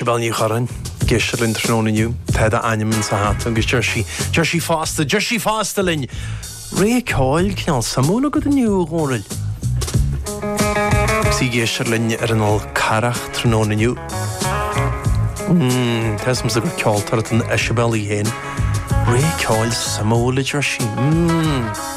Isabel Ní Chuireáin, ag éisteacht linn tráthnóna inniu, tá d'ainm insa hata agus deir sí, deir sí fosta, deir sí fosta linn, Rogha ceoil, cineál suimiúil agat inniu, a Dhónaill. Agus í ag éisteacht linn ar an Fhál Carrach tráthnóna inniu. Mmm, tá 'fhios agamsa gur ceoltóir atá in Isabel í féin. Rogha ceoil suimiúil, a deir sí. Mmm.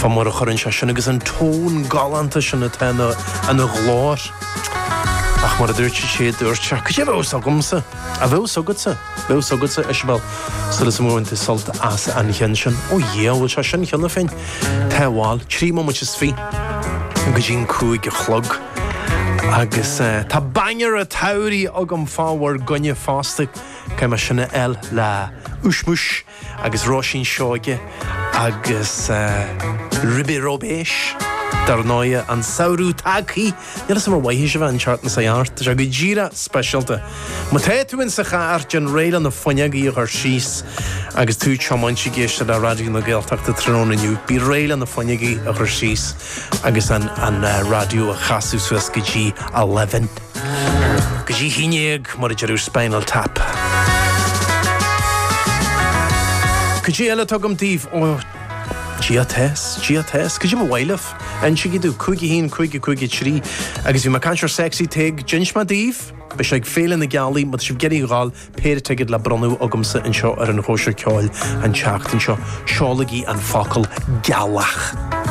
Fá mar a chuireann sé sin agus an tón galánta sin atá ina ina ghlór. Ach mar a dúirt siad sé dúirt sé cad é bheadh fhios agamsa, a bheadh fhios agatsa, bheadh fhios agatsa Isabel súil agam gur bhain tú sult as an cheann sin. Ó Dhia, an bhfuil sé sin cheana féin? Tá bhuel, trí móimid is fiche go dtí an cúig a chlog agus tá banger an tsamhraidh agam fá bhur gcoinne fosta, cé mar sin a fháil le Ushmush. agus Róisín Seoighe agus Ribe Róibéis, dar ndóigh, an samhradh tagthaí! Níl 'fhios a'm ar mhothaigh sibh an Chartlann sa Ghart, tá sé go díreach speisialta. Má tá tú insa charr, déan réidh le na fuinneogaí a chur síos agus tú ag tiomáint ag éisteacht le Raidió na Gaeltachta tráthnóna inniu. Bí réidh le na fuinneogaí a chur síos agus an raidió a chasadh suas go dtí eleven. Go dtí haon déag, mar a deir Spinal Tap. Cad é eile atá agam daoibh ó Gia Tess, Gia Tess, cad é bhur mbarúil. Insigí domh 51553 agus bhí mé ag caint ar Sexy Tadhg, d'inis mé daoibh. Beidh sé ag Féile na Gealaí má tá sibh ag iarraidh a ghabháil, péire ticéad le bronnadh agamsa anseo ar an Chóisir Ceoil an tseachtain seo. Seolaigí an focal 'Gealach'.